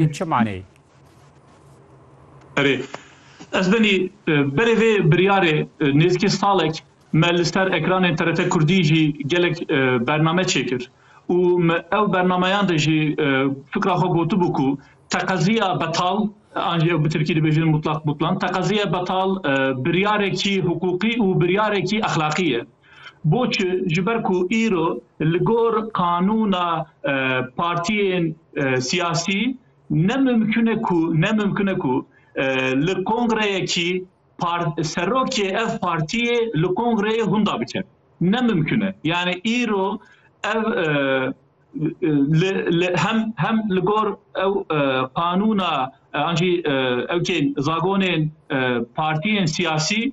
Ev çi maneyê? Erê, ez benî berê vê biryarê nêzîkê salek me li ser ekranên TRT Kurdî jî gelek bername çêkir û me ew bernameyan de jî fikra xwe gotibû ku teqeziya betal an jî ew bi tirkî dibêjin mutlak butlan teqeziya betal biryarekî hiqûqî û biryarekî exlaqî ye. Boçi? Ji ber ku îro li gor qanûna partiyên siyasî ne mimkun e ku ne mimkun e ku li kongreyekî serokê ev partiyê li kongreyê hûnda bike. Ne mimkun e. Yanî îro ev li li hem hem li gor ew qanûna an jî ew tên zagonên partiyên siyasî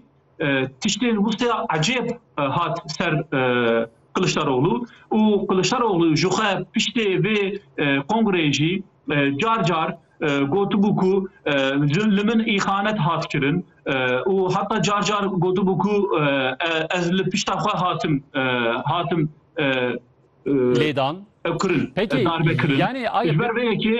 Tiştên wisa ecêb hat ser Kiliçdaroglu û Kiliçdaroglu jixwe piştê vê kongreyê jî car car gotibû ku li min îxanet hat kirin û heta car car gotibû ku ez li pişta xwe hatim hatim lêdan kirin darbe kirin. Ji ber vê yekê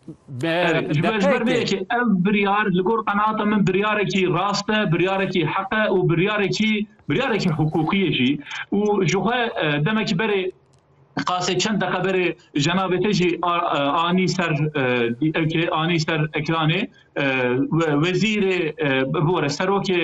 Ji ber ji ber vê yekê ev biryar li gor qenaata min biryarekî rast e, biryarekî heq e û biryarekî biryarekî hiqûqî ye jî û jixwe demekî berê qasê çend deqe berê jenabê te jî anî ser anî ser ekranê wezîrê bibore serokê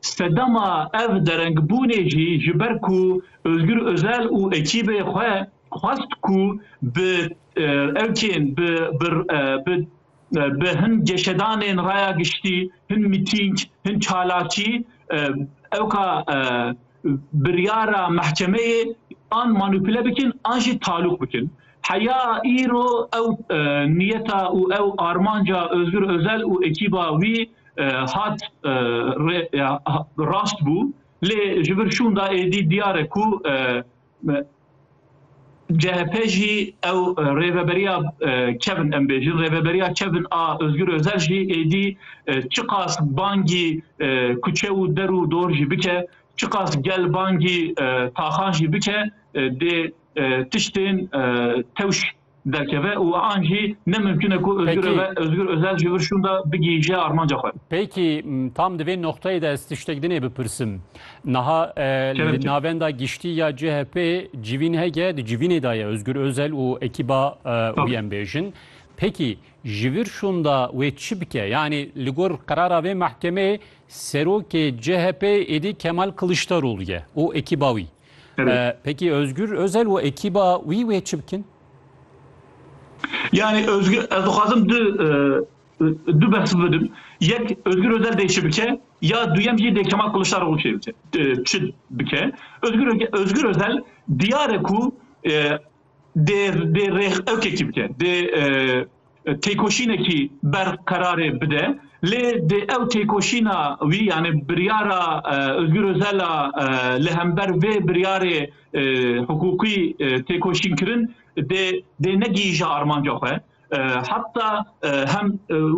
Sedema ev derengbûnê jî ji ber ku Ozgur Ozel û ekîbê xwe xwest ku bi evkên bi bi bi hin geşedanên raya giştî, hin mîtîng, hin çalakî ewka biryara mehkemeyê an manupule bikin an jî talûq bikin. Heya îro ew niyeta û ew armanca Ozgur Ozel û ekîba wî hat rast bû lê ji vir şûnda êdî diyar e ku CHP jî ew rêveberiya kevin em bêjin rêveberiya kevin a Özgür Özel jî êdî çiqas bangî kuçe û der û dor jî bike çiqas gel bangî taxan jî bike dê tiştên tewş derkeve û an jî ne mimkun e ku Ozgur Peki. Öve- Ozgur Özel ji vir şûnda bigihîje armanca xwe. Pêkî m, tam di vê noqteyê de ez tiştek dinê bipirsim. Niha e, Kerem li çi? navenda giştî ya CHP civîn hege di civînê de ye Özgür Özel û ekîba e, Tabii. wî em bêjin. Pêkî ji vir şûnda wê çi bike? Yanî li gor qerara vê mehkemeyê serokê CHP êdî Kemal Kılıçdaroğlu ye û ekîba wî. Peki Özgür Özel û ekîba wî wê çi bikin? Yani Özgür ez dixwazim du du behs bidim. Yek Özgür Özel dê çi bike ya duyem jî dê Kemal Kılıçdaroğlu çi bike. Çi bike. Özgür Özgür Özel diyare ku dê dê rêx evkekî bike. Dê têkoşînekî berqerarê bide lê dê ew têkoşîna wî yanê biryara Ozgûr Ozela li hember vê biryarê hiqûqî têkoşînkirin dê dê negihîje armanca xwe heta hem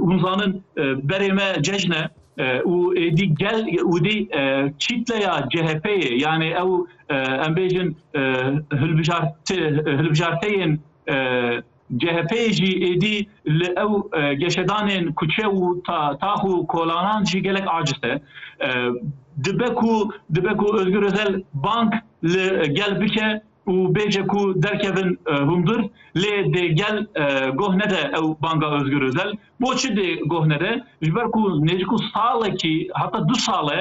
hûn zanin berê me cejn e û êdî gel û dî çîtleya CHP'yê yanê ew em bêjin hilbijarteyên CHP'yê jî êdî li ew geşedanên kuçe û tax û kolanan jî gelek aciz e. Dibe ku dibe ku Ozgur Ozel bang li gel bike û bêje ku derkevin hundir lê dê gel goh nede ew banga Ozgur Ozel. Bo çi dê goh nede? Ji ber ku nêzîk û salekî heta du sal e